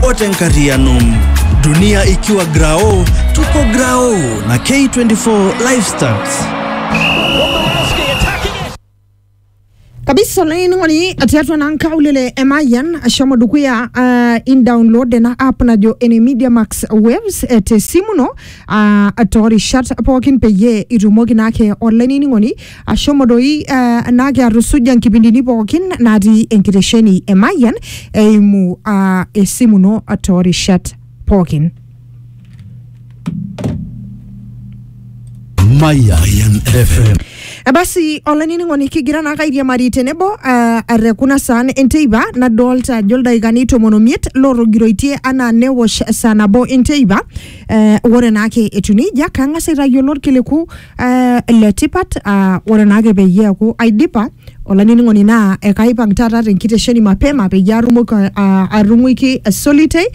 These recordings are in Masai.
ote nkariano dunia ikiwa grao tuko grao na k24 lifestyles kabisa laining'oni atiatua na nkaulele emayian ashomo dukuya uh, indownload ena app najo ene media max waves eh, te simu no uh, toorishat pookin peyie itumoki naake olainining'oni Ashomo doi uh, naa kiatusuja nkipindini pookin natii enkitesheni e Mayian eimu uh, esimu ino toorishat pookin. Mayan FM. Eh, Basi olainining'oni kigira naa kairiamari tenebo uh, are kuna saan enteipa nadolta ajo ildaikani tomon omiet lootogiroitie anaa newosh saa nabo enteipa Eh, ore naake etiu nejia kang'as aitayiolo irkiliku eh, le tipat ah, ore naake peyie eeku aidipa olainining'oni naa ekaipang taata tenkitesheni mapema peyie atumoki ah, atung'uiki Solitei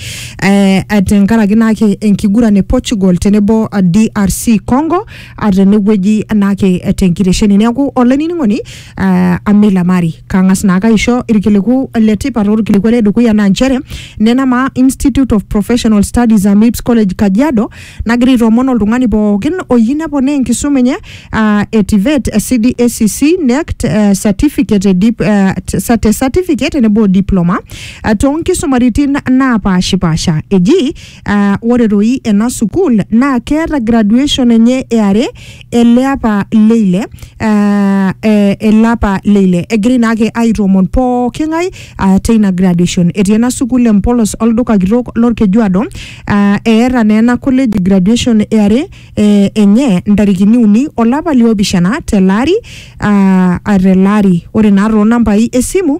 eh, eh, tenkaraki naake enkiguran e Portugal tenebo ah, DRC Congo ah, tenewueji naake eh, tenkitesheni neeku olainining'oni uh, Amila Mari kang'as naake aisho irkiliku le tipat orkiliku le dukuya naa nchere nena maa Institute of Professional Studies Amips College Kajiado nagira aitoomon oltung'ani pookin oyieu neponaa enkisuma enye uh, e TVET, eh, CDACC, NECT, eh, certificate, eh, dip, eh, t- sa- te certificate tenebo o diploma uh, toonkisumaritin naapashipasha eji Uh, ore doi ena sukuul naa keeta graduation enye eare ele apa leile uh, eh, ele apa leile egirai naake aitoomon pooki ng'ae uh, teina graduation etii ena sukuul empolos olduka kitok lorkejuado uh, eeta naa ena college graduation eare eh, enye ntarikini uni olapa liopishana tele ari uh, tele ari ore naa toonambai esimu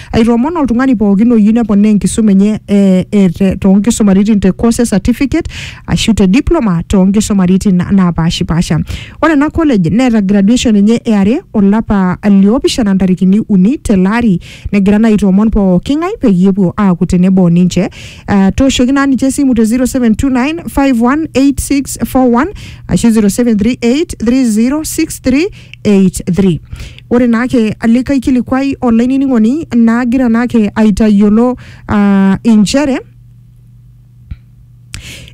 Aitoomon oltung'ani pookin oyieu neponaa enkisuma enye eh, eh, te- toonkisumaritin te course certificate ashu te diploma toonkisumaritin na- naapashipasha. Ore ena college neeta graduation enye eare olapa liopishana ntarikini uni tele ari negira naa aitoomon pooki ng'ae peyie epuo aaku tenebo ninche. Ah, tooshoki naa ninche esimu te 0729 518641 ashu 0738 3063 83 ore naake likae kilikuai olainining'oni naagira naake aitayiolo uh, inchere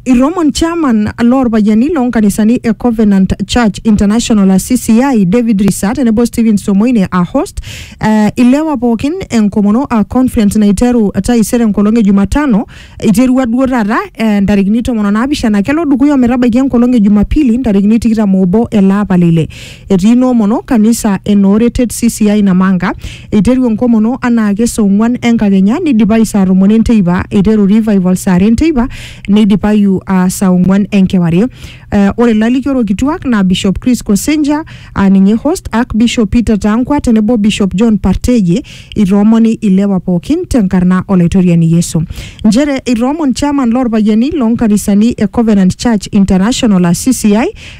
Iromon chairman loorpayiani loonkanisani e Covenant Church International CCI David Risa tenebo Stephen Somoine a host uh, ilewa pookin enkomono a conference naiteru taisere enkolong e Jumatano Eiterua duo taata eh, ntarikini tomon o naapishana kelo dukuya ometabaiki enkolong e Jumapili ntarikini tikitam oobo ele apa le ile. Etii inoomono kanisa e Nooretet CCI Namanga. Eiteru enkomono anaake saa ong'wan enkakenya neidipayu saa tomon enteipa. Eiteru revival saa are enteipa neidipayu ah, saa ong'wan enkewarie. Eh, ore lalikiorok kituak naa Bishop Chris Kosenja aa ninye host, Archbishop Peter Tangwa tenebo Bishop John Parteje Itoomoni ilewa pookin tenkarna Olaitoriani Yesu. Nchere itoomon chairman loorpayiani loonkanisani e Covenant Church International aa CCI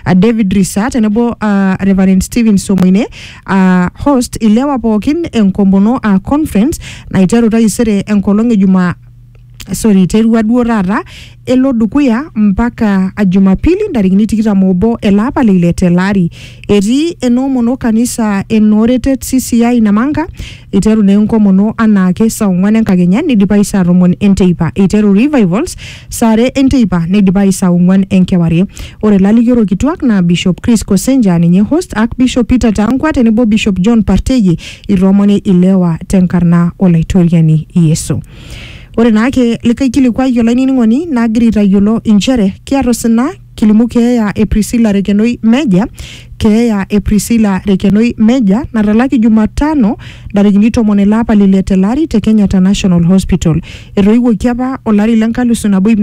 aa David Risa tenebo aa Reverend Stephen Somoine aa host ilewa pookin enkomono aa conference naiteru taisere enkolong e Jumaa sorry iterua duo taata elo dukuya mpaka a Jumapili ntarikini tikitam obo ele apa le ile tele ari. Etii enoomono kanisa enooretet CCI Namanga iteru naa enkomono anaake saa ong'wan enkakenya neidipayu saa tomon enteipa. Eiteru revivals saa are enteipa neidipayu saa ong'wan enkewarie. Ore lalikiorok kituak naa Bishop Chris Kosenje aa ninye host, Archbishop Peter Taankwa tenebo Bishop John Parteyie itoomoni ilewa tenkarna Olaitoriani Yesu. Ore naake likai kilikuai olainining'oni nagira aitayiolo inchere kiata osina kilimu keeya e Priscilla Rekenoi Meja, keeya e Priscilla Rekenoi Meja natalaki Jumatano ntarikini tomon ele apa le ile tele ari te Kenyatta National Hospital. Etoiwuoki apa olari le nkalisu nabo ip